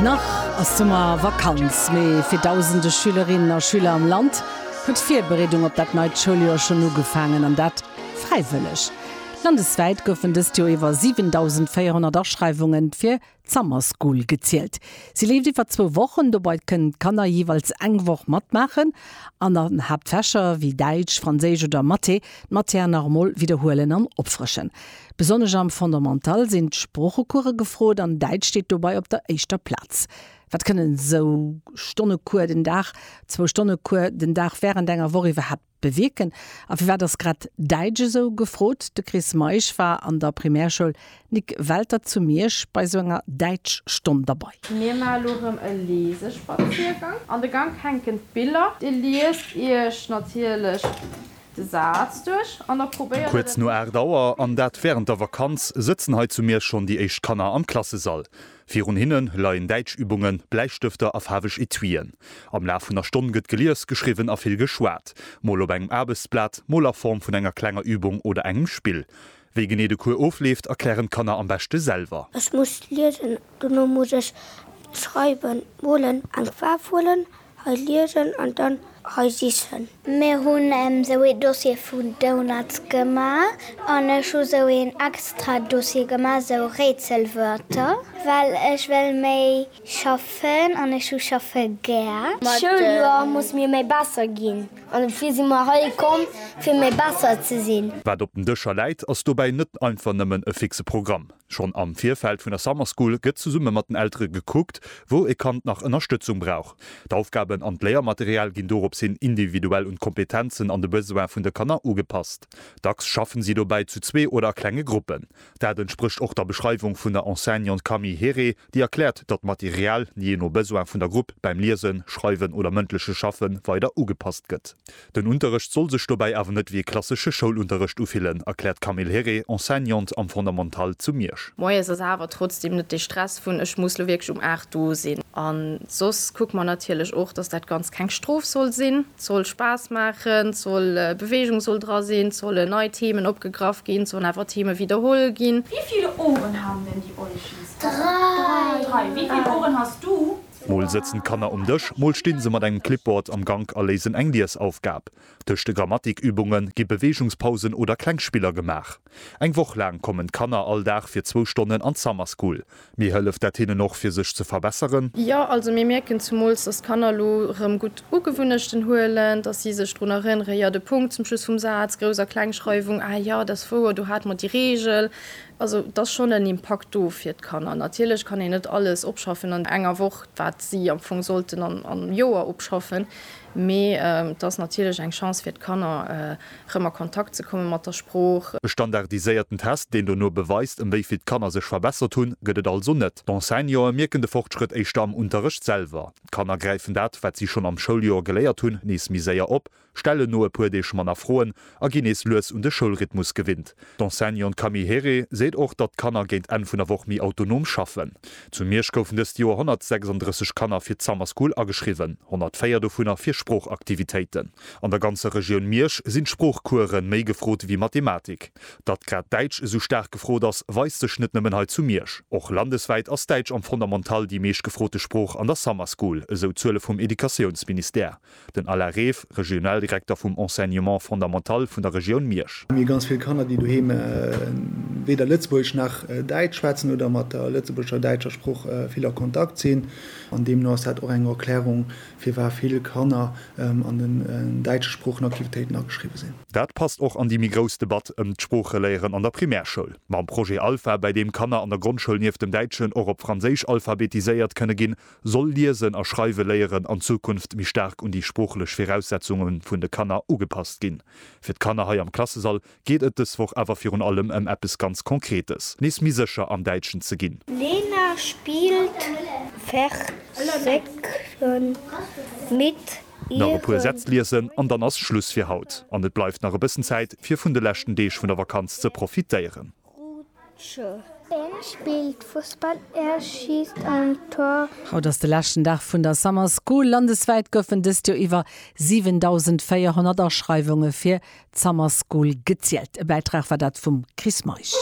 Nach ass Summervakanz, mee fir dausende Schülerinnen a Schüler am Land huet d'Virbereedung op dat neit Schouljoer schonn ugefaangen, an dat fräiwëlleg. Landeswäit goufen dëst Joer iwwer 7.400 Aschreiwunge fir d'Summer School gezielt. Si leeft iwwer zwou Wochen, dobei kënnen d'Kanner jeeweils eng Woch matmaachen an an Haaptfächer wéi Däitsch, Franséisch oder Mathé d'Matière normale widderhuelen an opfrëschen. Besonnesch am Fondamental sinn d'Sproochecourse gefrot an Däitsch steet dobei op der éischter Plaz. Wat kënnen esou Stonne Cours den Dag, zwou Stonne Cours den Dag wärend enger Woch iwwerhaapt bewierken? A firwat ass grad Däitsch esou gefrot? De Chris Meisch war an der Primärschoul Nic Welter zu Miersch bei esou enger Däitschstonn derbei. Mir man elo rem e Leesespaziergang. An de Gank hänken d'Biller. Dir liest iech natierlech De Saz duerch an da probéiert et. Kuerz no 8 Auer, an dat wärend der Vakanz, sëtzen hei zu Miersch schonn déi éischt Kanner am Klassesall. Virun hinne leien Däitschübungen, Bläistëfter a faarweg Etuien. Am Laf vun der Stonn gëtt gelies, geschriwwen a vill geschwat, mol op engem Aarbechtsblat, mol a Form vun enger klenger Übung oder engem Spill. Wéi genee de Cours ofleeft, erklären d'Kanner am beschte selwer. Ech muss liesen, dono muss ech schreiwen, molen, eng Faarf huelen, hei liesen an dann hei sichen. Mir hunn esou ee Dossier vun Donuts gemaach an ech hu sou een extra Dossier gemaach, sou Rätselwörter, well ech wéll méi Schaffen an ech hu schaffe gär. D'Schouljoer muss mir méi besser ginn an dofir si mer hei komm fir méi besser ze sinn. Wat op den Dëscher läit, ass dobäi net einfach nëmmen e fixe Programm. Schonn am Virfeld vun der Summer School gëtt zesumme mat den Eltere gekuckt, wou e Kand nach Ënnerstëtzung brauch. D'Aufgaben an d'Léiermaterial ginn dorops hin individuell un d'Kompetenzen an de Besoin vun de Kanner ugepasst. Dacks schaffen si dobäi zu zwee oder a klenge Gruppen. Dat entsprécht och der Beschreiwung vun der Enseignante Camille Herré, déi erkläert, datt d'Material, jee no Besoin vun der Grupp, beim Liesen, Schreiwen oder mëndleche Schaffe weider ugepasst gëtt. Den Unterrecht soll sech dobäi awer net wéi e klassesche Schoulunterrecht ufillen, erkläert d'Camille Herré, Enseignante am Fondamental zu Miersch. Moies ass awer trotzdeem net dee Stress vun ech muss lo wierklech um 8 do sinn. A soss kucke mer natierlech och, datt dat Ganzt keng Strof soll sinn. soll Spaass maachen, et soll Beweegung soll dra sinn, et solle nei Themen opgegraff ginn, et sollen awer Theme widderholl ginn. Wie viele Ohren haben denn die Olchis? Drei. Wie viel Ohren hast du? Mol sëtzen d'Kanner um Dësch, mol stinn se mat engem Clipboard am Gank a léisen eng Liesaufgab. Tëscht de Grammatikübunge gi Beweegungspausen oder kleng Spiller gemaach. Eng Woch laang kommen d'Kanner all Dag fir zwou Stonnen an d'Summer School. Mee hëlleft dat hinnen och fir sech ze verbesseren? Jo, also mir mierken zemools, dass d'Kanner elo rëm gutt Ugewunnechten huelen, dass si sech drun erënneren, jo, de Punkt zum Schluss vum Saz, Grouss a Klengschreiwung, ah jo, dat ass wouer, do hate mer déi Reegel. Also et ass schonn en Impakt do fir d'Kanner. Natierlech kann een net alles opschaffen an enger Woch, wat si am Fong sollten am Joer opschaffen, mee et ass natierlech eng Chance fir d'Kanner, rëm a Kontakt ze komme mat der Sprooch. E standardiséierten Test, deen dono beweist, ëm wéi vill d'Kanner sech verbessert hunn, gëtt et also net. D'Enseignantë mierken de Fortschrëtt éischter am Unterrecht selwer. D'Kanner gräifen dat, wat si schonn am Schouljoer geléiert hunn, nees méi séier op, stellen no e puer Deeg manner Froen a ginn nees lues un de Schoulrhythmus gewinnt. D'Enseignante Camille Herré seet och, datt d'Kanner géint Enn vun der Woch méi autonom schaffen. Zu Miersch goufen dëst Joer 136 Kanner fir d'Summer School ageschriwwen, 104 dovunner fir Sproochaktivitéiten. An der ganzer Regioun Miersch sinn d'Sproochcoursë méi gefrot ewéi Mathematik. Datt grad Däitsch esou staark gefrot ass, weist sech net nëmmen hei zu Miersch. Och landeswäit ass Däitsch am Fondamental déi meescht gefrote Sprooch an der Summer School, esou d'Zuele vum Educatiounsministère. Den Alain Reef, Regionaldirekter vum Enseignement fondamental vun der Regioun Miersch. Mir hu ganz vill Kanner, déi doheem weder Lëtzebuergesch nach Däitsch schwätzen oder mat der lëtzebuergescher, däitscher Sprooch vill a Kontakt sinn. An deemno ass dat och eng Erklärung, Firwat vill Kanner an den däitsche Sproochenaktivitéiten ageschriwwe sinn. Dat passt och an déi méi grouss Debatt ëm d'Sproocheléieren an der Primärschoul. Mam Projet Alpha, bäi deem Kanner an der Grondschoul nieft dem Däitschen och op Franséisch alphabetiséiert kënne ginn, soll Liesen a Schreiwe léieren an Zukunft méi staark un déi sproochlech Viraussetzunge vun de Kanner ugepasst ginn. Fir d'Kanner hei am Klassesall geet et dës Woch awer virun allem ëm eppes ganz Konkretes, nees méi sécher am Däitschen ze ginn. Lena spilt Versécken mit ihren. Nach e puer Sätz liesen an dann ass Schluss fir haut. An et bleift nach e bëssen Zäit fir vun de leschten Deeg vun der Vakanz ze profitéieren. Rutsche. Een spillt Fussball, ee schiisst an d'Tor. Haut ass de leschten Dag vun der Summer School. Landeswäit goufen dëst Joer iwwer 7.400 Aschreiwunge fir d'Summer School gezielt. E Bäitrag war dat vum Chris Meisch.